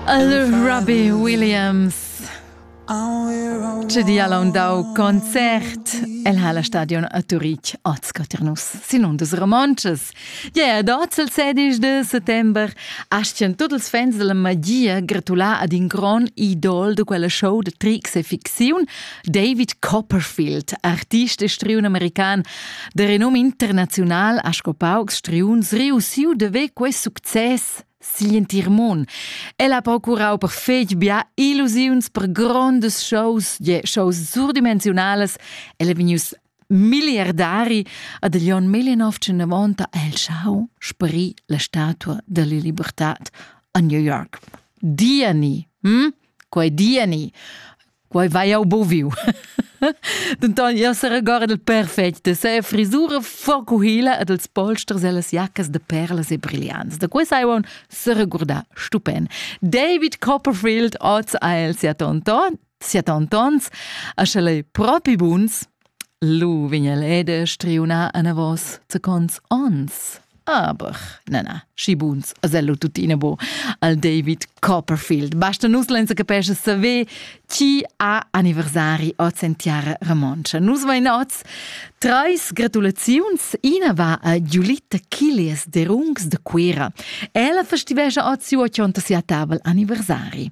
Allora, Robbie Williams Tge di ha dau concert? El ha la stadion a Turitg oz Caternus, sin un dus romontschas. Ja, ad oz il 16 de settember astien tutti ils fans della magia gratular ad in gran idol de quella show de tricks e ficziun, David Copperfield, artist e striun american de renome internazional ha sco paucs striuns reussiu de ver quei success sigl entir mon. El ha procurau per fetg bia illusiuns per grondas shows, je shows surdimensionales. El è venius miliardari ad el Jon 1990 el schau sprì la statua della libertà a New York. Diani, hm? Quei Diani Quei vai jau buviu. Denton jeu seregora del perfect de se frisura forcuhila e dels polsters e las jaccas de perlas e brillants. Da quei sai un seregurda stupen. David Copperfield oz ha el sia tonton, sia tontons, a schel ei propi buns, Lu vegn el ed striuna anavos zacons ons. Aber, na, na, schi buns, asello tuttina bo, al David Copperfield. Basta nus lenza capesce saver chi ha anniversari oz en tiara romontscha. Nus vain oz treis gratulaziuns. Ina va a Giulitta Kilias de Rungs de Cuira. Ella festivescia oz siu ochonta sia tavel anniversari.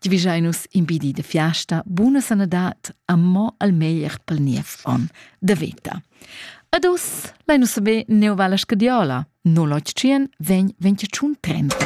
Givischein nus impedi de fiasta, buna sanadat, amò al meglier pel niev on de veta. Ad us, lai nus saber neu va la scadiola, 081 vegn 25 30.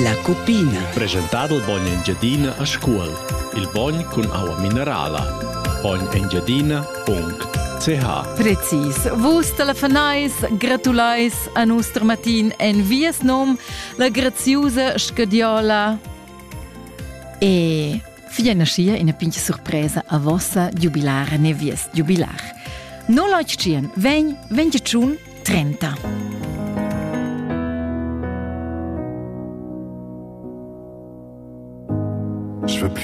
La cupina. Presentado il bogn Engiadina a Scuol. Il bogn cun aua minerala. Bognengiadina.ch Precis. Vus telefonais, gratulais a nus Matin en vies nom, la graziusa scadiola. E fia naschia ina pigna surpresa a vossa giubilara ne vies giubilar. No lautschien, vegn, vegn tschun, trenta. Je veux plus